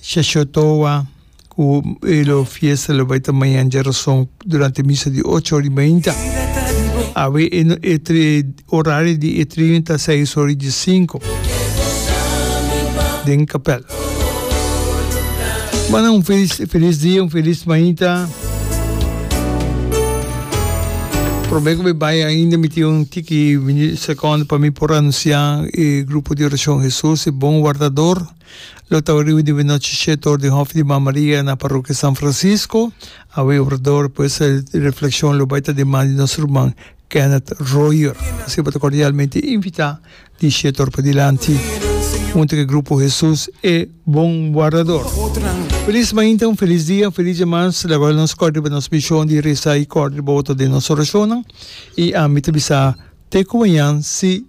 Shashothoa, ku e lo fiesta lo bai ta mañan dje rason durante misa di ocho ora i beinta. Awe e no e tri orario di e trio ta seis ora i dje sinko den kapèl. Bo nan un felis felis dia un felis mainta. Promé ku be bai ainda mi tin un tiki sekondo pa mi por anunsiá e grupo di orashon Hesus e bon wardador. Lo ta oriu di benochi shete or den Hof di Mama Maria na Parokia San Francisco. Awe orador pues di refleccion lo bay ta di man di nos ruman Kenneth Royer. Asina bo ta cordialmente invita di shete or padilanti hunto cu e grupo Hesus e Bon Wardador. Feliz mainta, un feliz dia, un feliz dia mas. Laga awel nos cor riba nos mision di resa y cor riba otro den nos oracionnan. Y ami ta bisa te cu mañan si.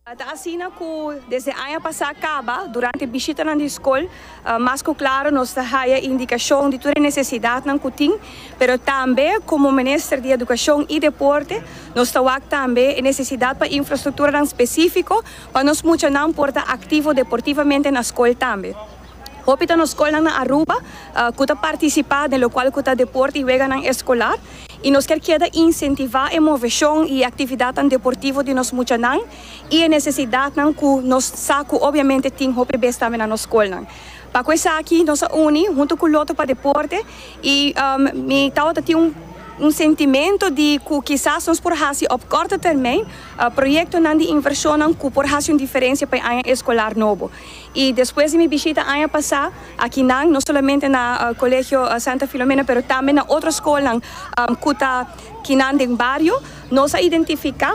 Ta asina ku desde aña pasá kaba, durante bishitanan di skol, mas ku klaro nos ta haya indikashon di tur e nesesidatnan ku tin, pero tambe komo Minister di Edukashon i Deporte nos ta wak tambe e nesesidat pa infrastrukturanan spesífiko pa nos muchanan por ta aktivo deportivamente na skol tambe. Hopi ta nos skolnan na Aruba ku ta partisipá den lokual ku ta deport i weganan eskolar i nos kier keda insentivá e moveshon i e aktividatnan deportivo di nos muchanan i e nesesidatnan ku nos sa ku obiamente tin hopi bes tambe na nos skolnan. Pa ku esaki nos a uni huntu ku Lotto pa Deporte i mi tabata tin un un sentimento di ku kisas nos por hasi op korto termijn proyektonan di invershonnan ku por hasi un diferensia pa e aña eskolar nobo. Y despues di mi bishita aña pasá, akinan, no solamente na Colegio Santa Filomena, pero tambe na otro scolnan cu ta kinan den bario, nos a identificá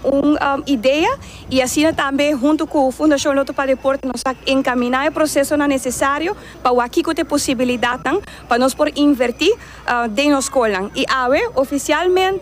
un idea y asina tambe hunto cu Fundacion Lotto pa Deporte nos a encaminá e procesonan necesario pa wak kico ta e posibilidadnan pa nos por invertí den nos scolnan. Y awe, oficialmente.